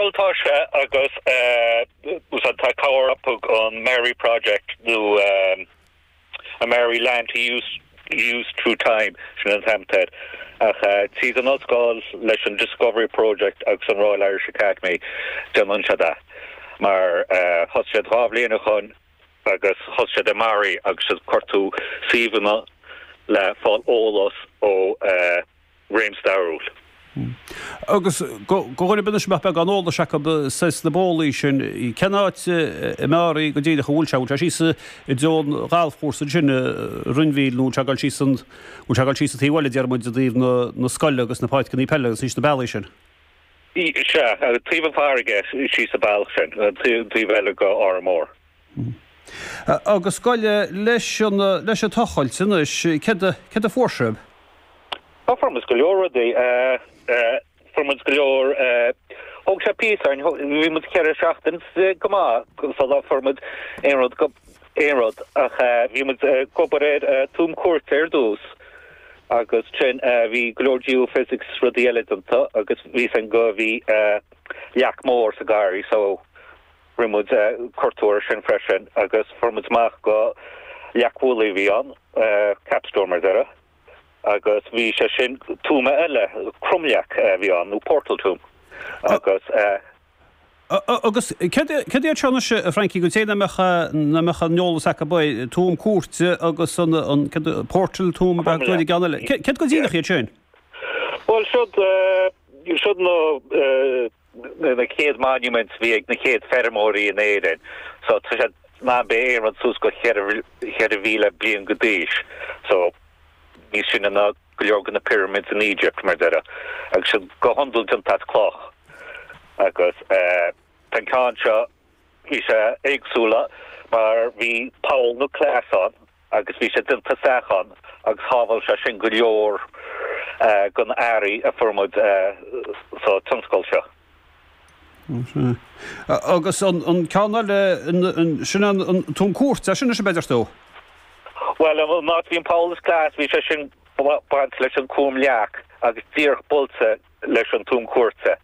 Bhuel tá sé agus úsáid atá ag cabhair thug an Maree Project nó eh Maree Land Use Through Time sin an t-ainm atá air ach tríd an Ollscoil leis an Discovery Project agus an Royal Irish Academy déanann siad a mar thosaigh siad dhá bhliain ó shin agus thosaigh siad i Mearaí agus siad ag cuartú suíomhanna le fáil eolas ó réamhstairiúil. Agus do dhaoine anois nach mbeadh aon eolas acu sna bólaí sin, cén áit i Mearaí go díreach a bhfuil sé? An bhfuil sé síos i dtreo an ghalfchúrsa ansin, Rinn Mhíl, nó an bhfuil sé ag dul síos an, bhfuil sé ag dul síos an taobh eile déarfaidh muid i dtaobh na scoile agus na páirceannaí peile agus síos na bealaí sin? Sea, taobh an farraige síos an bealach sin, an taobh eile go Órán Mór. Hm. Agus gabh i leith leis an, leis an tochailt anois, céard a, céard a fuair sibh? Ó fuair muid go leor rudaí eh, eh fuair muid go leor eh, thóg sé píosa orainn though, bhí muid ceithre seachtain eh, go maith sula fuair muid aon rud go, aon rud ach eh, bhí muid eh, ag obair ar eh, tuama cúirte ar dtús agus sin eh, bhí go leor geophysics rudaí eile déanta agus bhí a fhios againn go bhí eh, leac mór sa garraí so, Rinne muid cuartú ar sin freisin agus fuair muid amach go leac mhullaigh a bhí ann, capstone mar a déarfá, agus bhí sé sin tuama eile, cromleac a bhí ann nó portal tomb agus. Agus céard céard iad seo anois a Frankie, do dhaoine nach mbeadh, nach mbeadh aon eolas acu b'fhéidir, tuama cúirte agus an an céard portal tomb ab é an ceann eile, céard go díreach iad sin? Bhuel siod siod na. na chéad monuments bhí ag na chéad feirmeoirí in Éirinn so tá sé ná beidh Éirinn suas go cheithre mhíle bliain go d'aois so níos sine ná go leor de na pyramids in Egypt mar a déarfá agus siad go hiondúil déanta as cloch agus tá an ceann seo Bhí sé éagsúla mar bhí poll nó clais ann agus bhí sé déanta isteach ann agus shábháil sé sin go leor den earraí a fuair muid sa tionscal seo. Agus an ceann eile, sin an tuama cúirte, é sin anois, b'fhéidir, Steve? Bhuel, an áit a bhí an poll is clais, bhí sé sin bainte leis an cromleac agus díreach buailte leis an tuama cúirte.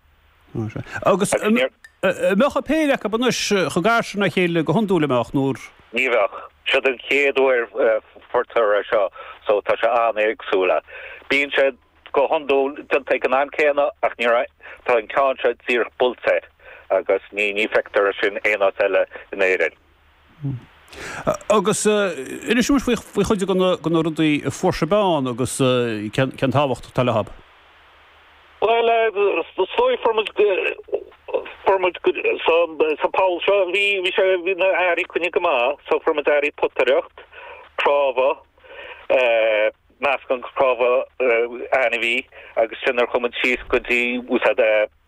Agus an mbeadh an péire acu anois chomh gar sin dá chéile go hiondúil an mbeadh nuair. Ní bheadh. Siod an chéad uair a fuarthas é seo so tá sé an-éagsúla. Bíonn sé go hiondúil déanta ag an am céanna ach ní raibh, tá an ceann seo díreach buailte agus ní feictear é sin aon áit eile in Éirinn. Agus inis dúinn faoi chuid de na rudaí a fuair sibh ann agus cén tábhacht atá leob. Bhuel, so fuair muid fuair muid sa pholl seo, bhí sé, bhí na earraí coinnithe go maith so fuair muid earraí potaireacht, cnámha, meascán de chnámha ainmhí agus sin ar chuir muid síos go dtí úsáid.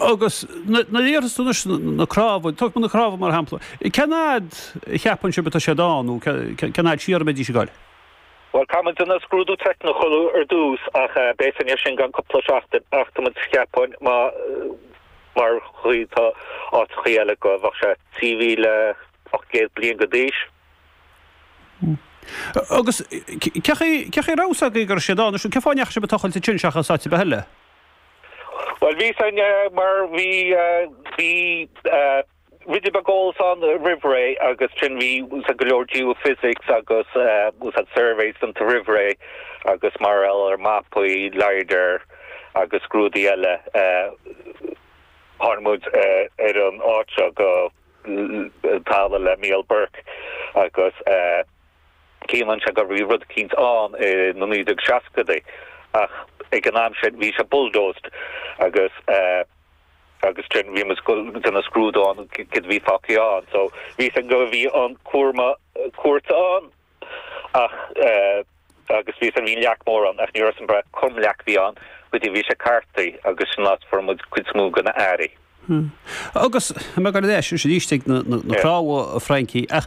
Agus nuair a iarrthas tú anois na cnámha, tóg na cnámha mar shampla, cén fhad a cheapann sibh atá siad ann nó cén fhad siar a mbeidís ag dul? Bhuel, caithfidh muid an scrúdú teicniúil a chur ar dtús ach beidh sin ann i gceann cúpla seachtain ach tá muid, cheapfainn, mar an chaoi atá áiteachaí eile go bheadh sé 3,800 bliain go d'aois. Agus cén chaoi a raibh a fhios agaibh go raibh siad ann? Cén fáth a ndeachaigh sibh ag tochailt ansin seachas áit ar bith eile? Bhuel bhí a fhios againn mar bhí bhí ruidín beag eolas ann roimh ré agus sin bhí úsáid go leor geophysics agus site surveys déanta roimh ré agus mar gheall ar mapaí lidar agus rudaí eile tháinig muid ar an áit seo go talamh le Micheál Burke agus Cuimhníonn sé go raibh rud eicínt ann i na 1960idí ach ag an am sin bhí sé bulldozed agus agus sin bhí muid ag déanamh scrúdú ann céard a bhí fágtha ann so bhí a fhios againn go bhí an tuama cúirte ann ach agus bhí a fhios againn bhí leac mór ann ach ní raibh a fhios againn bre cén leac a bhí ann go dtí bhí sé cartaithe agus sin an áit a fuair muid an chuid is mó de na earraí. Agus me go leis sé istigh na cnámha a Frankie ach